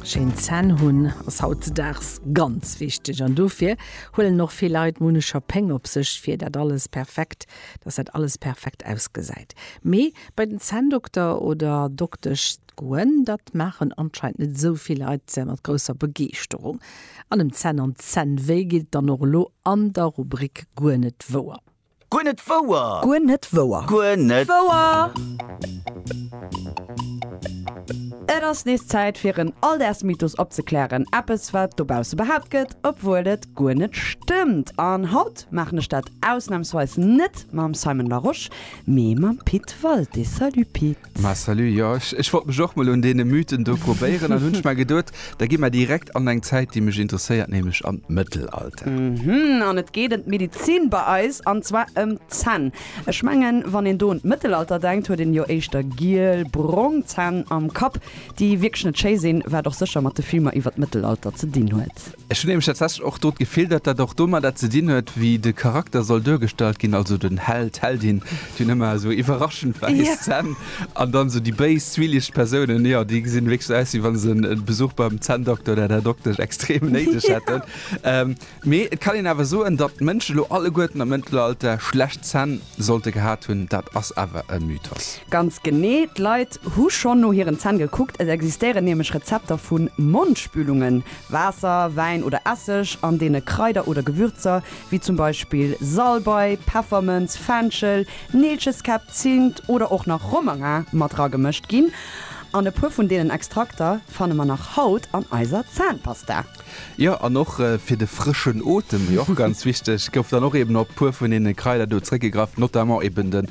Schéin Zänn hunn ass hautzedaags ganz wichteg an dofir huelen och vill Leit Munecher Péng op sech fir dat alles perfekt, dass dat alles perfekt ausgesäit. Mee bei den Zänndokter oder doktesch goen, dat maachen anscheinend net esou vill Leit mat grousser Begeeschterung. An em Zänn an Zännwéi geet et dann och elo an der Rubrik Guer net wouer. Guer net wouer! Guer net wouer! Guer net wouer! Et ass nees Zäit fir en Alldaagsmythos opzeklären, eppes wat dobausse behaapt gëtt, obwuel et guer net stëmmt. An haut maachen ech dat ausnamsweis net mam Simon Larosche, mee mam Pit Walté. Salut Pit! Ma salut, jo ech wollt mech och mol un deene Mythen do probéieren an hunn ech mer geduet, da gi mer direkt an eng Zäit déi mech interesséiert, nämlech an d'Mëttelalter. Mhm, an et geet em d'Medizin bei eis, an zwar em d'Zänn. Ech mengen wann een do un d'Mëttelalter denkt, huet een jo éischter giel, brong Zänn am Kapp, déi wierklech net schéi sinn, wat och sécher mat de Filmer iwwer d'Mëttelalter ze dinn huet. Ech hunn nämlech tatsächlech och do d'Gefill, datt dat och domadder ze dinn huet, wéi de Charakter soll duergestallt ginn, also den Held, d'Heldin, déi hunn ëmmer esou iwwerraschend wäiss Zänn, an dann esou déi béis, zwielicht Persounen, jo, déi gesinn wierklech esou aus, wéi wa se e Besuch beim Zänndokter oder der Doktesch extrem néideg hätten. Mee et kann een awer soen, datt d'Mënschen elo alleguerten am Mëttelalter schlecht Zänn sollte gehat hunn, dat ass awer e Mythos. Ganz genee, d'Leit hu schonn no hiren Zänn gekuckt, et existéieren nämlech Rezepter vu Mondspülungen, Waasser, Wäin oder Esseg, an deene Kraider oder Gewürzer, wéi zum Beispill Salbei, Peffermënz, Fenchel, Neelcheskäpp, Zimt oder och nach Romarin mat ragemëscht ginn. An e puer vun deenen Extrakter fanne mer nach haut an eiser Zahnpasta. Jo, an och fir de frëschen Otem, wéi och ganz wichteg, gouf dann och eben op e puer vun deene Kraider do zréckgegraff, notamment eben de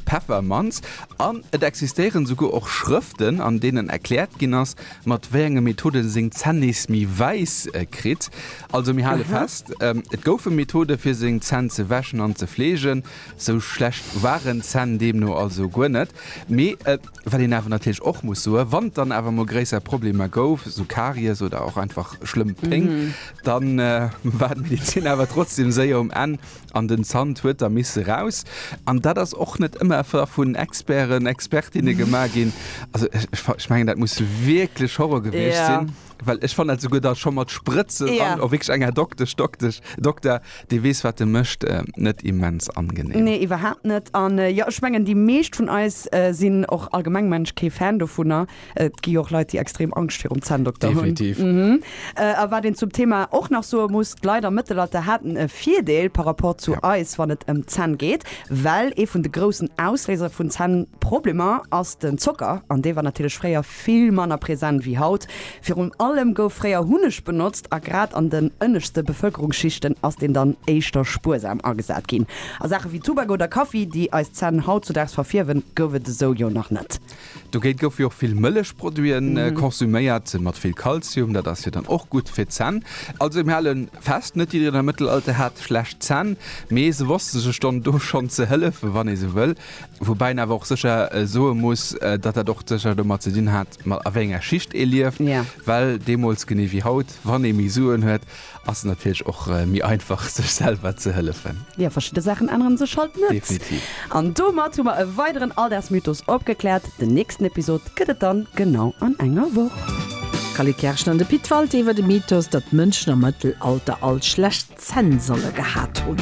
Peffermanz. An et existéieren souguer och Schrëften, an deenen erkläert ginn ass, mat wéi enge Methoden seng Zänn nees méi wäiss kritt. Also mir hale fest, et goufe Methode fir seng Zänn ze wäschen an ze fleegen. Sou schlecht waren d'Zänn deemno also guer net. Mee wat een awer natierlech och muss soen, wann et dann awer mol gréisser Problemer gouf, sou Karies oder och einfach schlëmm Péng, da war d'Medezin awer trotzdeem séier um Enn. An den Zant huet da misse raus. An dat ass och net ëmmer vun Experten, Expertinne gemaach ginn. Also ech mengen, dat muss wierklech Horror gewiescht sinn. Ja. Well ech fannen dat souguer da scho mat Sprëtzen an. Ja. Och wierklech eng Här Doktesch, Doktesch, Dokter, dee weess, wat e mécht, net immens angenehm. Nee, iwwerhaapt net. An jo, ech mengen, déi meescht vun eis sinn och allgemeng Mensch kee Fan dovunner. Et gi och Leit, déi extrem Angscht virum Zänndokter hunn. A wat een zum Thema och nach soe muss, d'Leit am Mëttelalter haten e Virdeel par rapport zu eis, wann et ëm d'Zänn geet, well ee vun de groussen Ausléiser vun Zännproblemer ass den Zocker an dee war natierlech fréier vill manner present wéi haut. Virun allem gouf fréier Hunneg benotzt a grad an den ënneschte Bevëlkerungsschichten ass deen dann éischter spuersam agesat ginn. A Saache wéi Tubak oder Kaffi, déi eis Zänn hautzudaags verfierwen, gouf et esou jo nach net. Dogéint goufe jo och vill Mëllechproduiten konsuméiert, mat vill Kalzium, dat ass jo dann och gutt fir d'Zänn. Also mir hale fest, net jiddereen am Mëttelalter hat schlecht Zänn, mee se wosste sech dann do schonn ze hëllefen, wann ee sou wëll. Woubäi een awer och sécher soe muss, datt dat och sécher domat ze dinn hat, a wéi enger Schicht ee lieft, well deemools, genee wéi haut, wann ee méi Suen huet, Ass natierlech och méi einfach sech selwer ze hëllefen. Jo, verschidde Saachen änneren sech halt net. Definitiv. An domat hu mer e weideren Alldagsmythos opgekläert. Den nächsten Episod gëtt et dann genau an enger Woch. D'Cally Kerschen an de Pit Walté iwwer de Mythos, datt Mënschen am Mëttelalter all schlecht Zänn solle gehat hunn.